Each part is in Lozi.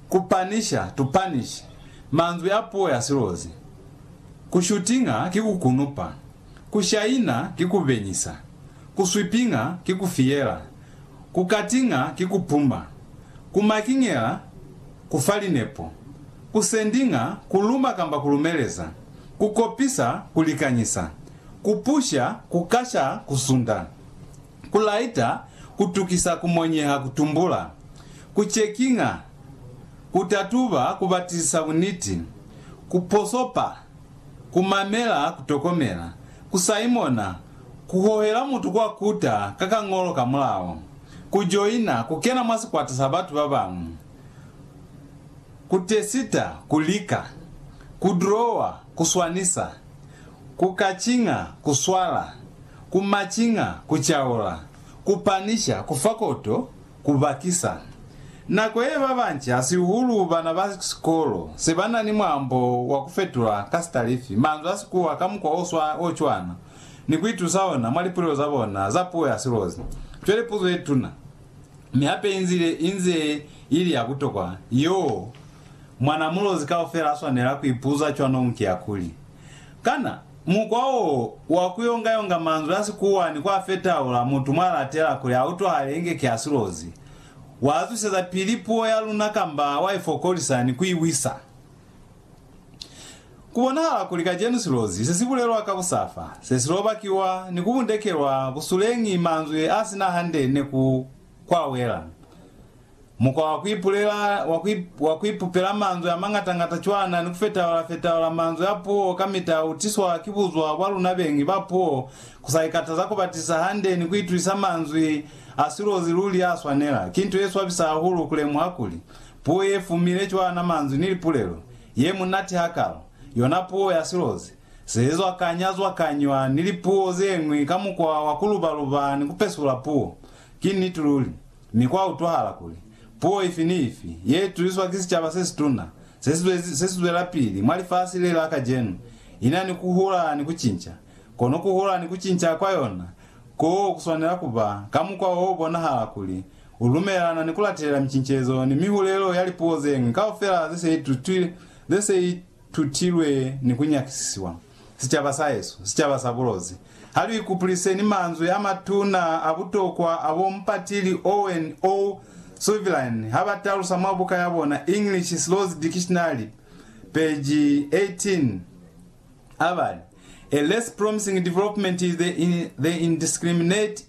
Ku panisha, to punish, manzwi a puo ya silozi. Ku shootinga ki ku kunupa. Ku shaina ki ku benyisa. Ku sweepinga ki ku fiyela. Ku cuttinga ki ku puma. Ku markingela ku fa linepo. Ku sendinga ku luma kamba ku lumeleza. Ku kopisa ku likanyisa. Ku pusha ku kasha ku sunda. Ku laita ku tukisa ku monyeha ku tumbula. Ku cekinga, ku tatuba, ku batisisa buniti, ku posopa, ku mamela, ku tokomela, ku saimona, ku hohela mutu kwa kuta ka kañolo ka mulao, ku joina, ku kena mwa sikwata sa batu ba bañwi, ku tesita, ku lika, ku drowa, ku swanisa, ku kacinga, ku swala, ku macinga, ku caula, ku panisha, ku fa koto, Ku bakisa nako ye, ba banci, hasihuhulu bana ba sikolo, se ba na ni mwambo wa ku fetula ka sitalifi manzwi a Sikuwa ka mukwa o cwana ni ku itusa ona mwa lipulelo za bona za puo ya silozi. Cwale puzo ye tuna, mi hape i nzile i nze i li ya butokwa, yeo mwana mulozi kaufela a swanela ku ipuza cwanong ki ya kuli, Kana mukwa wo wa ku yongayonga manzwi a Sikuwa ni ku a fetaula mutu mwa latela kuli a utwahale inge ki a silozi, wa zwiseza pili puo ya luna kamba wa i fokolisa ni ku i wisa? Ku bonahala kuli kacenu silozi se si bulelwa ka busafa, se si lobakiwa ni ku bundekelwa busuleñi manzwi a si na hande ne ku kwawela. Mukwa wa kuipulela wa ku, wa kuipupela manzwi amangatangata cwana ni kufetaula-fetaula manzwi a puo kamita utiswa ki buzwa bwa luna beñi ba puo, kusaikataza kubatisa hande ni kuitwisa manzwi a silozi luli aswanela. Ki nto yeswabisa hahulu kulemuha kuli, puo yefumile cwana manzwi ni lipulelo, yemunati hakalo, yona puo ya silozi, sezwakanya-zwakanywa ni lipuo zeñwi ka mukwa wa kuluba-luba ni kupesula puo. Ki niti luli. Mi kwa utwahala kuli, puo ifi ni ifi ye ituliswa ki sicaba se situna se si zwezi, se si zwelapili mwa lifasi le la kacenu, ina ni ku hula ni ku cinca. Kono ku hula ni ku cinca kwa yona ko ku swanela ku ba ka mukwa o bonahala kuli u lumelana ni ku latelela micincezo ni mihulelo ya lipuo ze ñwi kaufela ze se itutilwe ni ku nyakisisiwa. sicaba sa hesu, sicaba sa bulozi. Ha lu ikupuliseni manzwi a matuna a butokwa a bo Mpatili Owen O. Suvilane ha ba talusa mwa buka ya bona English Slows Dictionary, peji 18, ha ba li, A less promising development is the indiscriminate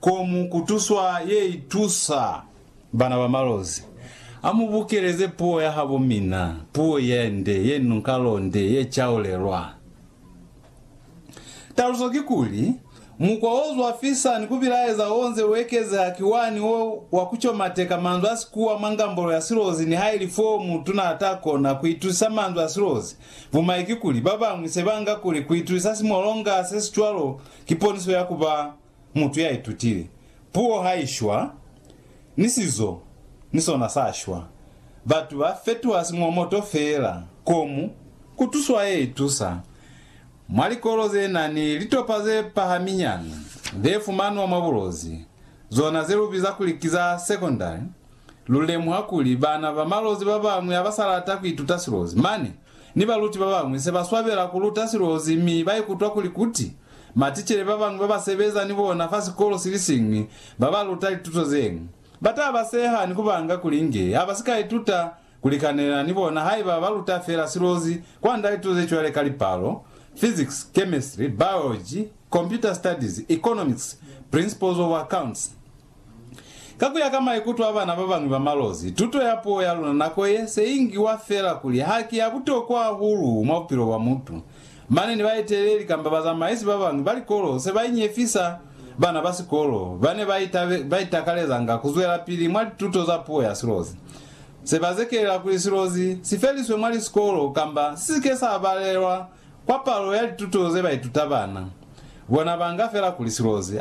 Ko mu kutuswa ye itusa bana ba malozi. A mu bukeleze puo ya habo mina, puo ye nde, ye nunkalonde, ye caulelwa. Taluso kikuli, mukwa o zwafisa ni ku bilaeza o nze u ekezeha ki wani wo wa ku comateka manzwi a sikuwa mwa ngambolo ya silozi nihaili foo mutuna a ta kona ku itusisa manzwi a silozi. Bumai kikuli, ba bañwi se ba nga kuli ku itusisa simolonga se si cwalo ki poniso ya ku ba Mutu ya itutile puo ha i shwa, ni sizo ni sona sa shwa. Batu ba fetuha simwamoto feela. Komu, ku tuswa ye itusa. Mwa likolo ze na ni litopa ze pahaminyana ze fumanwa mwa bulozi, zona ze lu biza kuli ki za sekondari, lu lemuha kuli bana ba malozi ba bañwi ha ba sa lata ku ituta silozi mane ni baluti ba bañwi se ba swabela ku luta silozi mi ba ikutwa kuli kuti. Maticele ba bañwi ba ba sebeza ni bona fa sikolo si li siñwi ba ba luta lituto ze ñwi. Ba ta ba seha ni ku ba nga kuli inge ha ba si ka ituta ku likanela ni bona haiba ba luta fela silozi kwand'a lituto ze cwale ka lipalo, physics, chemistry, biology, computer studies, economics, principles of accounts, Ka ku ya ka maikuto a bana ba bañwi ba malozi, tuto ya puo ya luna nako ye se i ngiwa fela kuli ha ki ya butokwa hahulu mwa bupilo bwa mutu. Mane ni baeteleli kamba bazamaisi ba bañwi ba likolo se ba inyefisa bana ba sikolo ba ne ba itakalezanga ku zwelapili mwa lituto za puo ya silozi. Se ba zekelela kuli silozi si feliswe mwa lisikolo kamba si si ke sa balelwa kwa palo ya lituto ze ba ituta bana. Bona banga fela kuli silozi